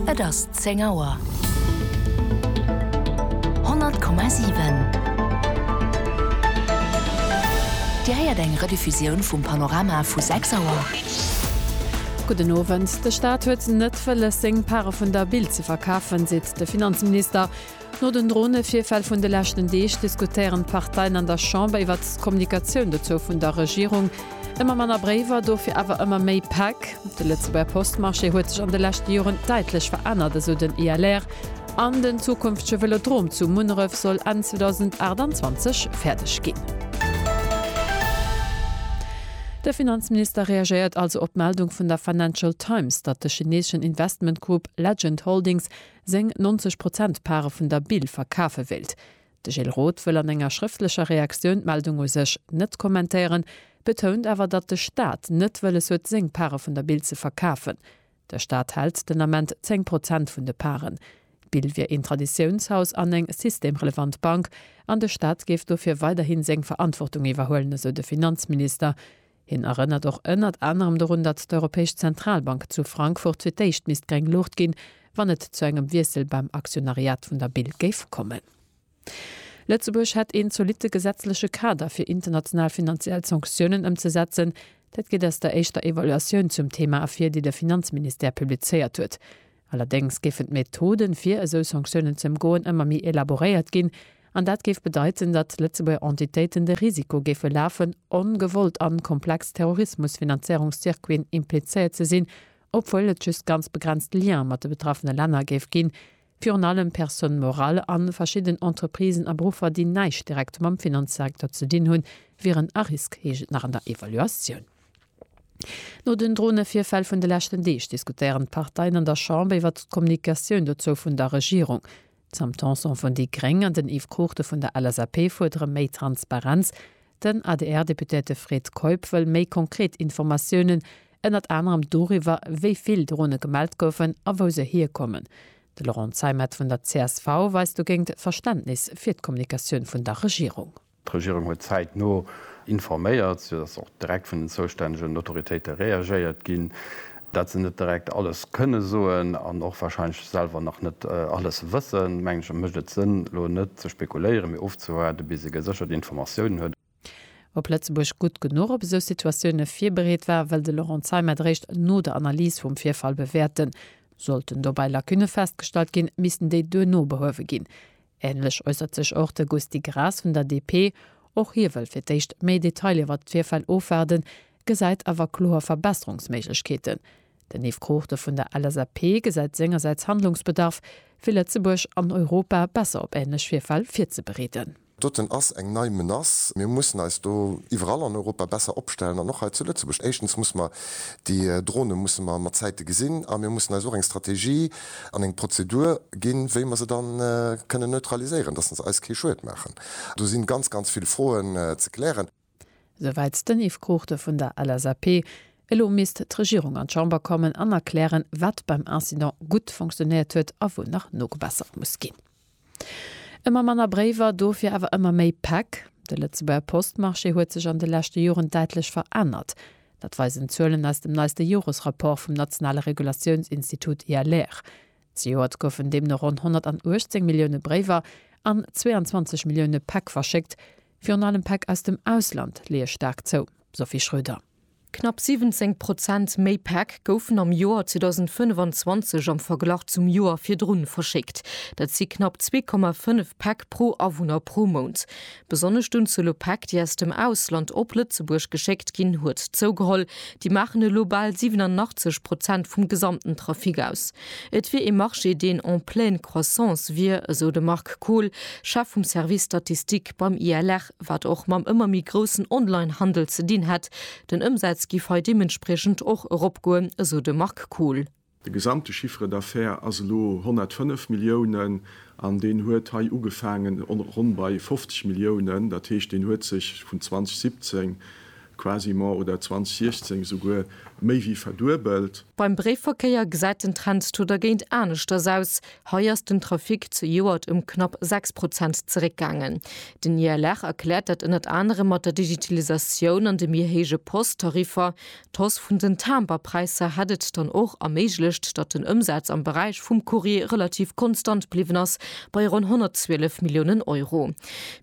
Et ass zéng Auer. 100,7. Dir héiert eng Rediffusioun vum Panorama vu sechs Auer. Gudden Owend. De Staat huet net wëlles, seng Pare vun der Bild ze verkafen, seet de Finanzminister. No den Dronevirfäll vun de leschten Deeg diskutéieren d'Parteien an der Chamber iwwer d'Kommunikatioun dozou vun der Regierung. Ëmmer manner Bréiwer, dofir awer ëmmer méi Päck. De Lëtzebuerger Postmarché huet sech an de leschte Joren däitlech verännert, esou den ILR. An den zukünftege Vëlodrom zu Munneref soll Enn 2028 fäerdeg ginn. De Finanzminister reagéiert also op d'Meldung vun der Financial Times, datt de chineeschen Investmentgrupp Legend Holdings seng 90 Prozent Pare vun der Bil verkafe wéilt. De Gilles Roth wëll an enger schrëftlecher Reaktioun d'Meldung u sech net kommentéieren, betount awer, datt de Staat net wëlles huet, seng Pare vun der Bil ze verkafen. De Staat hält den Ament 10 Prozent vun de Paren. D'Bil wier een Traditiounshaus an eng systemrelevant Bank an de Staat géif dofir weiderhi seng Verantwortung iwwerhuelen, esou de Finanzminister. Hien erënnert och ënnert anerem dorun, datt d'Europäesch Zentralbank zu Frankfurt fir d'éischt misst gréng Luucht ginn, wann et zu engem Wiessel beim Aktionariat vun der Bil géif kommen. Lëtzebuerg hätt een zolitte gesetzleche Kader fir international finanziell Sanktiounen ëmzesetzen. Dat geet aus der éischter Evaluatioun zum Thema ervir, déi de Finanzministère publizéiert huet. Allerdéngs géifen d'Methoden, fir esou Sanktiounen ze ëmgoen, ëmmer méi elaboréiert ginn, an dat géif bedeiten, datt Lëtzebuerger Entitéiten de Risiko géife lafen, ongewollt an komplex Terrorismusfinanzéierungscircuiten implizéiert ze sinn, obwuel et just ganz begrenzt Liene mat de betraffene Länner géif ginn, virun allem Personnes morales a verschidden Entreprisen a Beruffer, déi näischt direkt mam Finanzsektor ze dinn hunn, wieren a Risk, heescht et nach an der Evaluatioun. No den Dronevirfäll vun de leschten Deeg diskutéieren d'Parteien an der Chamber iwwert d'Kommunikatioun dozou vun der Regierung. D'Sam Tanson vun déi gréng an den Yves Cruchten vun der LSAP fuerdere méi Transparenz. Den ADR-Deputéierte Fred Keup wëll méi konkret Informatiounen, ënnert anerem doriwwer, wéi vill Drone gemellt goufen a wou se hierkommen. De Laurent Zeimet vun der csv weist dogéint Verständnis fir d'Kommunikatioun vun der Regierung. D'Regierung huet zäitno informéiert, sou datt och direkt vun den zoustännegen Autoritéite reagéiert ginn. Dat se net direkt alles kënne soen an och warscheinlech selwer nach net alles wëssen, mengen ech, mécht et Sënn, elo net ze spekuléieren, mee ofzewaarden, bis ee geséchert Informatiounen huet. Ob Lëtzebuerg gutt genuch op esou Situatioune virbereet war, wëll de Laurent Zeimet eréischt no der Analys vum Virfall bewäerten. Sollten dobäi Lacunne festgestallt ginn, missten déi duerno behuewe ginn. Ähnlech äussert sech och de Gusty Graas vun der DP. Och hie wëll fir d'éischt méi Detailer iwwert d'Virfäll ofwaarden, gesäit awer kloer Verbesserungsméiglechkeeten. Den Yves Cruchten vun der LSAP gesäit sengersäits Handlungsbedarf, fir Lëtzebuerg an Europa besser op ähnlech Virfäll virzebereeden. Doten ass eng nei Menace. Mir mussen eis do iwwerall an Europa besser opstellen an och hei zu Lëtzebuerg. Éischtens musse mer déi Drone musse mer mat Zäite gesinn a mir mussen eis och eng Strategie, an eng Prozedur ginn, wéi mer se dann kënnen neutraliséieren, dass se eis kee Schued maachen. Do si ganz, ganz vill Froen ze klären. Souwäit den Yves Cruchten vun der LSAP. Elo misst d'Regierung an d'Chamber kommen an erklären, wat beim Incident gutt fonctionéiert huet a wou nach nogebessert muss ginn. Ëmmer manner Bréiwer, dofir awer ëmmer méi Päck? De Lëtzebuerger Postmarché huet sech an de leschte Joren däitlech verännert. Dat weisen d'Zuelen aus dem neiste Joresrapport vum nationale Regulatiounsinstitut ILR. Zejoert goufen deemno ronn 118 Millioune Bréiwer an 22 Millioune Päck verschéckt. Virun allem Päck aus dem Ausland leeë staark zou, Sophie Schröder. Knapp 17 Prozent méi Päck goufen am Joer 2025 am Verglach zum Joer virdrun verschéckt. Dat si knapp 2,5 Päck pro Awunner pro Mount. Besonnesch d'Unzuel u Päck, déi aus dem Ausland op Lëtzebuerg geschéckt ginn, huet zougeholl. Déi maachen elo bal 87 Prozent vum gesamten Trafic aus. Et wier ee Marché, deen en pleine croissance wier, esou de Marc Kohl, Chef vum Service Statistik beim ILR. wat och mam ëmmer méi groussen Online-Handel ze dinn hätt. Den Ëmsaz giff hei deementspriechend och eropgoen, esou de Marc Kohl. De gesamte Chiffre d'affaires ass elo 105 Milliounen an deen huet hei ugefaangen ronn bei 50 Milliounen. Dat heescht, deen huet sech vun 2017 Quasiment, oder 2016 souguer méi wéi verduebelt. Beim Bréifverkéier gesäit den Trend to dergéint aneschters aus, hei ass den Trafic zejoert ëm knapp 6 Prozent zeréckgaangen. Den ILR erkläert dat ënnert anerem mat der Digitalisatioun an de méi héije Post-Tariffer. D'Hausse vun den Timbre-Präisser hätt et dann och erméiglecht, datt den Ëmsaz am Beräich vum Courrier relativ konstant bliwwen ass bei ronn 112 Milliounen Euro.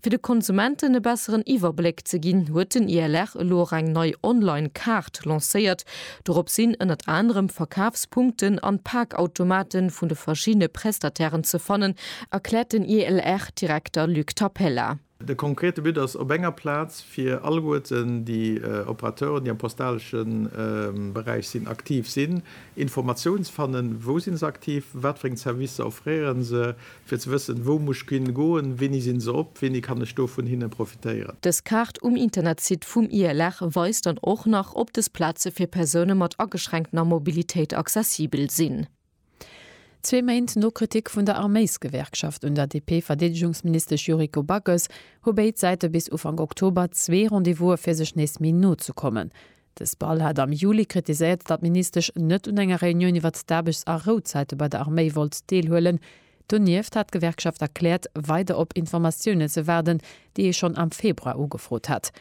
Fir de Konsumenten e besseren Iwwerbléck ze ginn, huet den ILR elo och eng nei Online-Kaart lancéiert. Dorop sinn ënnert anerem d'Verkafspunkten an d'Paakautomate vun de verschiddene Prestatairen ze fannen, erkläert den ILR-Direkter Luc Tapella. De konkrete But ass, op enger Plaz fir alleguerten déi Operateuren, déi am postalesche Beräich sinn, aktiv sinn, Informatiounen ze fannen, Wou si se aktiv? Wat fir eng Servicer offréiere se? Fir ze wëssen, wou muss d'Quinn goen, wéini sinn se op, wéini kann ech do vun hinne profitéieren. Dës Kaart um Internetsite vum ILR weist dann och nach, ob dës Plaze fir Persoune mat ageschränktener Mobilitéit accessibel sinn. Zwee Méint no Kritik vun der Arméisgewerkschaft un der DP-Verdeedegungsministesch Yuriko Backes hu béid Säite bis Ufank Oktober zwee Rendez-vouse fir sech nees méi no ze kommen. De SPAL hat am Juli kritiséiert, datt d'Ministesch net un enger Reunioun iwwert d'Aarbechts a Rouzäite bei der Arméi wollt deelhuelen. Donieft hat d'Gewerkschaft erkläert, weider op Informatiounen ze waarden, déi ee schonn am Februar ugefrot hat.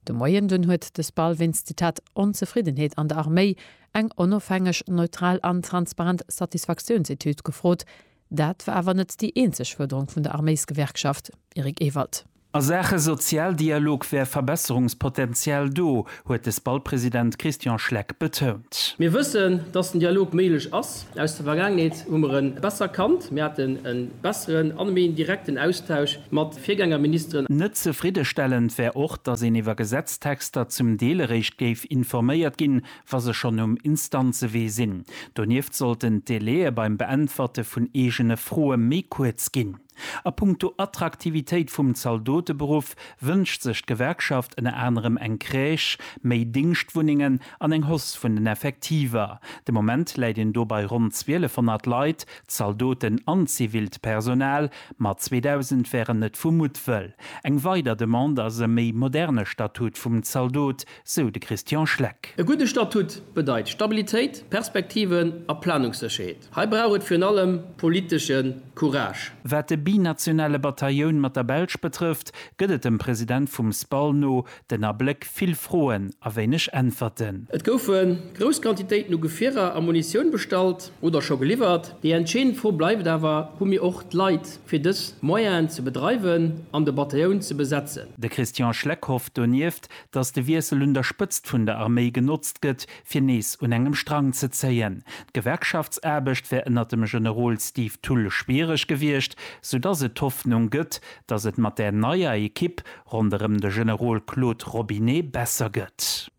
De Moien dunn huet de SPAL wéinst, Zitat, Onzefriddenheet an der Arméi eng onofhängeg, neutral an transparent Satisfaktiounsetüd gefrot, Dat war awer net déi eenzeg Fuerderung vun der Arméisgewerkschaft, Eric Ewald. A Saache Sozialdialog wär Verbesserungspotenzial do, huet de SPAL-President Christian Schleck betount. Mir wëssen, datt den Dialog méiglech ass. Aus der Vergaangenheet hu mer e besser kannt. Mir haten e besseren a méi direkten Austausch mat Virgängerministeren. Net zefriddestellend wär och, datt een iwwer Gesetztexter zum Deel eréischt géif informéiert ginn, wa se schonn um Instanzewee sinn. Donieft sollten d'Délaië beim Beäntwerte vun eegene Froe méi kuerz ginn. A punkto Attraktivitéit vum Zaldoteberuff wënscht sech d'Gewerkschaft ënner anerem eng Crèche, méi Dingschtwunnengen an eng Hausse vun den Effektiver. De Moment läit een do bei ronn 1.200 Leit, Zaldoten an zivilt Personal, ma 2.000 wären net vu Muttwëll. Eng weider Demande ass e méi moderne Statut vum Zaldot, sou de Christian Schleck. E gudde Statut bedeit Stabilitéit, Perspektiven a Planungssécherheet. Hei brauch et virun allem politesche Courage. Wat de binationale Batailloun mat der Belsch betrëfft, gëtt et dem President vum SPAL no den Abléck vill Froen a wéineg Äntwerten. Et goufe grouss Quantitéiten u Gefierer a Munitioun bestallt oder scho geliwwert. Déi entscheedend Fro bleift awer, Hu mir och d'Leit fir dës Moyenen ze bedreiwen an de Batailloun ze besetzen? De Christian Schleck hofft donieft, datt de Wiessel un der Spëtzt vun der Arméi genotzt gëtt, fir nees un engem Strang ze zéien. D'Gewerkschaftsaarbecht wär ënner dem Generol Steve Thull schwiereg gewiescht, soudatt et d'Hoffnung gëtt, datt et mat där neier Ekipp ronderëm de Generol Claude Robinet besser gëtt.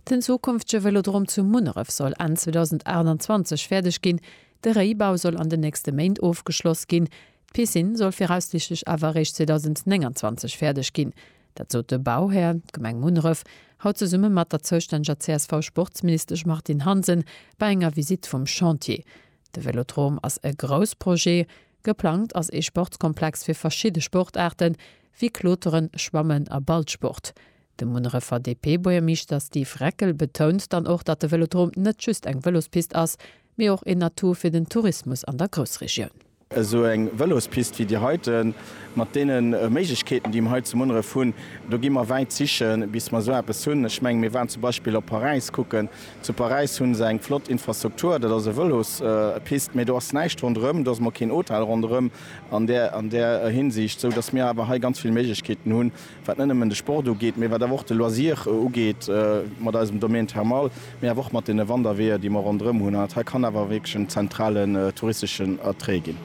Den zukünftege Vëlodrom zu Munneref soll Enn 2028 fäerdeg ginn. De Réibau soll an den nächste Méint ofgeschloss ginn. D'Piscine soll viraussichtlech awer eréischt 2029 fäerdeg ginn. Dat sot de Bauhär, d'Gemeng Munneref, haut zesumme mat der zoustänneger CSV-Sportsministesch Martine Hansen bei enger Visitt vum Chantier. De Vélodrome ass e grouss Projet. Geplangt ass ee Sportskomplex fir verschidde Sportaarte wéi Kloteren, Schwammen a Ballsport. De Munnerefer DP-Buergermeeschter Steve Reckel betount dann och, datt de Vélodrome net just eng Vëlospist ass, mee och een Atout fir den Tourismus an der Groussregioun. Esou eng Vëlospist wéi déi heiten, mat deene Méiglechkeeten, déi mer hei zu Munneref hunn, do gi mer wäit sichen, bis mer esou eppes hunn. Ech menge mir waren zum Beispill op Paräis kucken. Zu Paräis hu se eng flott Infrastruktur, dat ass e Vëlospist, mee do ass näischt ronderëm, do ass emol keen Hotel ronderëm an där Hinsicht, esou datt mir awer hei ganz vill Méiglechkeeten hunn, wat net nëmmen de Sport ugeet, mee wat awer och de Loisir ugeet mat eisem Domaine Thermal, mee awer och mat deene Wanderweeër, déi mer ronderëm hunn. An dat hei kann awer wierklech en zentralen touristeschen Attrait ginn.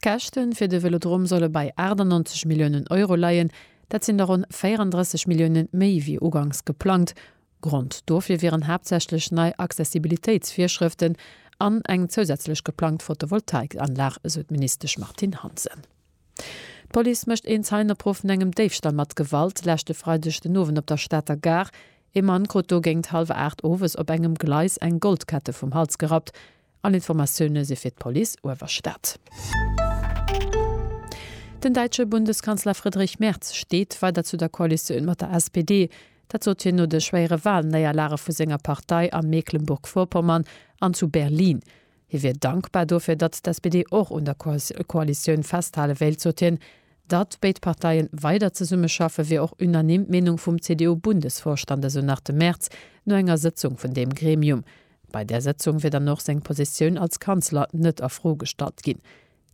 D'Käschte fir de Vélodrom solle bei 98 Milliounen Euro leien. Dat sinn der ronn 34 Millioune méi wéi ugangs geplangt. Grond dofir wieren haaptsächlech nei Accessibilitéitsvirschrëften an eng zousätzlech geplangt Photovoltaikanlag, esou d'Ministesch Martine Hansen. D'Police mécht een Zeienopruff vun engem Déifstall mat Gewalt leschte Freideg den Owend op der Stater Gare. Ee Mann krut do géingt hallwer 8 owes op engem Gleis eng Goldkette vum Hals gerappt. All Informatioune si fir d'Police Uewerstad. Den däitsche Bundeskanzler Friedrich Merz steet weider zu der Koalitioun mat der SPD. Dat sot hien no de schwéiere Walnéierlage vu senger Partei a Mecklenburg-Vorpommern an zu Berlin. Hie wier dankbar dofir, datt d'SPD och un der Koalitioun festhale wéilt, sot hien. Datt béid Parteie weider zesummeschaffen, wier och unanime d'Meenung vum CDU-Bundesvorstand, esou nach de Merz no enger Sëtzung vun deem Gremium. Bei där Sëtzung wier dann och seng Positioun als Kanzler net a Fro gestallt ginn.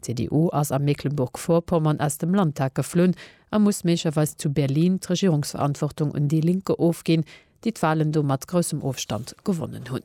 D'CDU ass a Mecklenburg-Vorpommern aus dem Landtag geflunn a muss méiglecherweis zu Berlin d'Regierungsverantwortung un déi Linke ofginn, déi d'Walen do mat groussem Ofstand gewonnen hunn.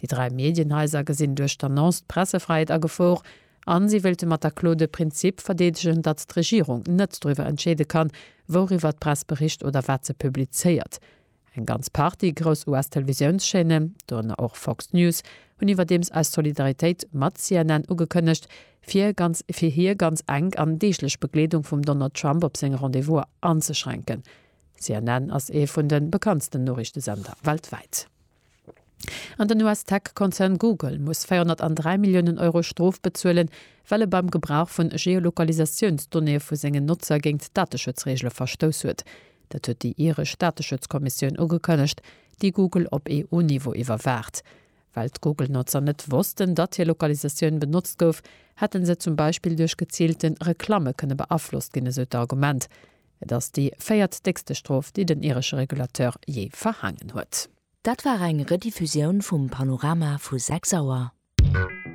Déi dräi Medienhaiser gesinn duerch d'Annonce d'Pressefräiheet a Gefor a si wéilte mat der Klo de Prinzip verdeedegen, datt d'Regierung net driwwer entscheede kann, wouriwwer d'Press bericht oder wat se publizéiert. Eng ganz Partie grouss US-Televisiounschaîne, dorënner och Fox News, hunn iwwerdeems eis Solidaritéit mat CNN ugekënnegt, fir ganz fir hir ganz enk an deeglech Begleedung vum Donald Trump op seng Rendez-Vouser anzeschränken. CNN ass ee vun de bekanntsten Noriichtesender weltwäit. An den US-Tech-Konzern Google muss 403 Milliounen Euro Strof bezuelen, well e beim Gebrauch vu Geolokalisatiounsdonnéeë vu sengen Notzer géint Dateschutzreegele verstouss huet. Dat huet déi iresch Dateschutzkommissioun ugekënnegt, déi Google op EU-Niveau iwwerwaacht. Well d'Google-Notzer net wossten, datt hir Lokalisatioun benotzt gouf, hätte se zum Beispill duerch geziilte Reklamme kënne beaflosst ginn, esou d'Argument. Et ass déi véiert déckste Strof, déi den iresche Regulateur jee verhaangen huet. Dat war eng Rediffusioun vum Panorama vu 6 Auer.